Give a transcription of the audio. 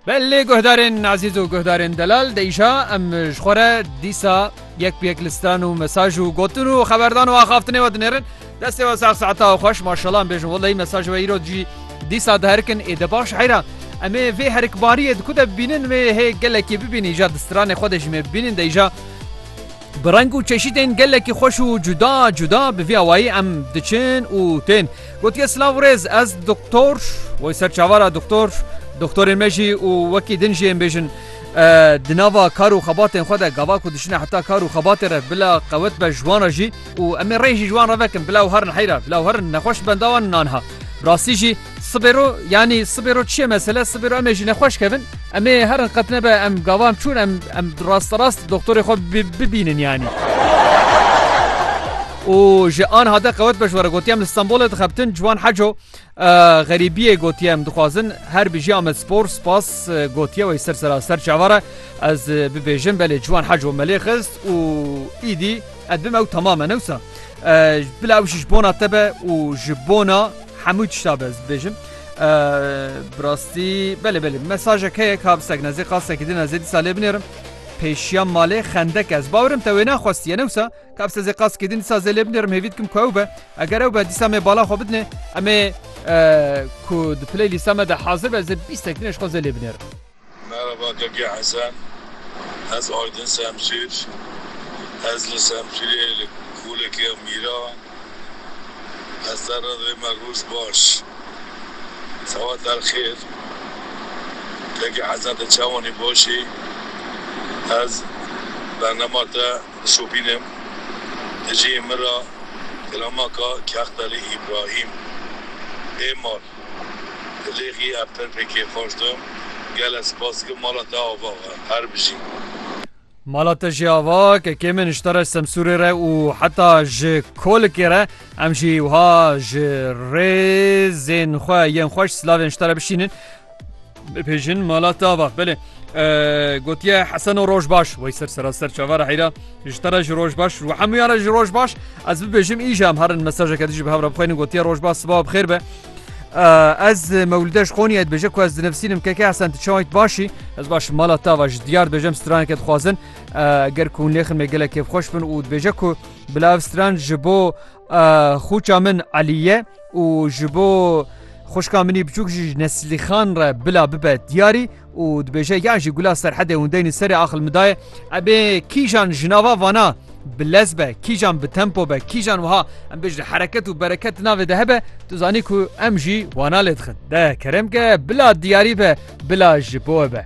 Belê guhdarên Azîz û guhdarên Delal de îşa em ji xwe re dîsa yek bi yek li stran û mesaj û gotin û xeberdan û axaftinê we dinêrin. Destê we sax saeta xweş maşala em bêjin weleyî mesaj we îro cî dîsa diherikin ê de baş heyra. Em ê vê herikbariyê di ku de bibînin wê hê gelekê bibînin îja di stranê xwe de jî me bibînin de îja Bi reng û çeşîtên gelekî xweş û cuda cuda bi vî awayî em diçin û tên. Gotiye silav rêz ez doktor wê ser çavar a doktor doktorên me jî û wekî din jî ên bêjin di nava kar û xebatên xwe de gava ku diçine heta kar û xebatê re bila qewet be ji wan re jî û em ê rê jî ji wan re vekin bila ew herin heyra bila ew herin nexweş benda wan in anha rastî jî Sibê ro yanî sibê ro çi ye mesele sibê ro em ê jî nexweş kevin em ê herin qet nebe em gava em çûn em em rasterast doktorê xwe bibînin yanî. Û ji anha de qewet beş were gotiye em li Stenbolê dixebtin ciwan heco xerîbiyê gotiye em dixwazin her bijî Amed Spor spas gotiye wey ser sera ser çavara ez bibêjim belê ciwan heco melê xist û îdî Ez bim ew tamam e ne wisa. Bila ew jî ji bona te be û ji bona hemû tişta be ez dibêjim. Bi rastî belê belê mesajek heye ka bistek nezê qastekî din ezê dîsa lê binêrim. Pêşiya malê xendek ez bawirim te wê naxwestiye ne wisa ka se zê qaskê din dîsa zê lê binêrim hêvî dikim ku ew be eger ew be dîsa me bala xwe bidinê em ê ku di playlîsta me de hazir be zê bîstek dinê ji xwe zê lê binêrim. Merhaba Keke Hesen ez Aydin Semsûr ez li Semsûrê li Kolekê ya Mîra ez te re didê me roj baş sewat el xêr Keke Hesen te çawanî başî ez bernema te dişopînim di cihê min ra kilamaka Kextelî Îbrahîm ê mal. Rêxiya Pirpikê xweş dom. Gele spas dikim mala te ava be. Her bijî. Mala te jî ava kekê min ji te re Semsûrê re û heta ji Kolikê re em jî wiha ji rêzên xwe yên xweş silavên ji te re bişînin. Bipêjin mala tava belê gotiye heseno roj baş wey ser seraster çavara heyra ji te re ji roj baş û hemûyan re ji roj baş ez bibêjim îja em herin mesajeke dijî bi hevra bixwênin gotiye roj baş siba bixêr be ez mewlideş xoniye et bêje ku ez dinivsînim keke hesen tu çawayt başî ez baş mala tava ji diyar bêjem straneke dixwazin ger ku lêxin me gelek kêfxweş bin û dibêje ku bila ev stran ji bo Xûça min Elî ye û ji bo xwişka minî biçûk jî ji Neslîxan re bila bibe diyarî û dibêje yan jî gula serhedê hûn deynî serê axil min daye ebê kîjan ji nava vana bi lez be kîjan bi tempo be kîjan wiha em bêj li hereket û bereket navê de hebe tu zanî ku em jî wana lê dixin de kerem ke bila diyarî be bila ji bo be.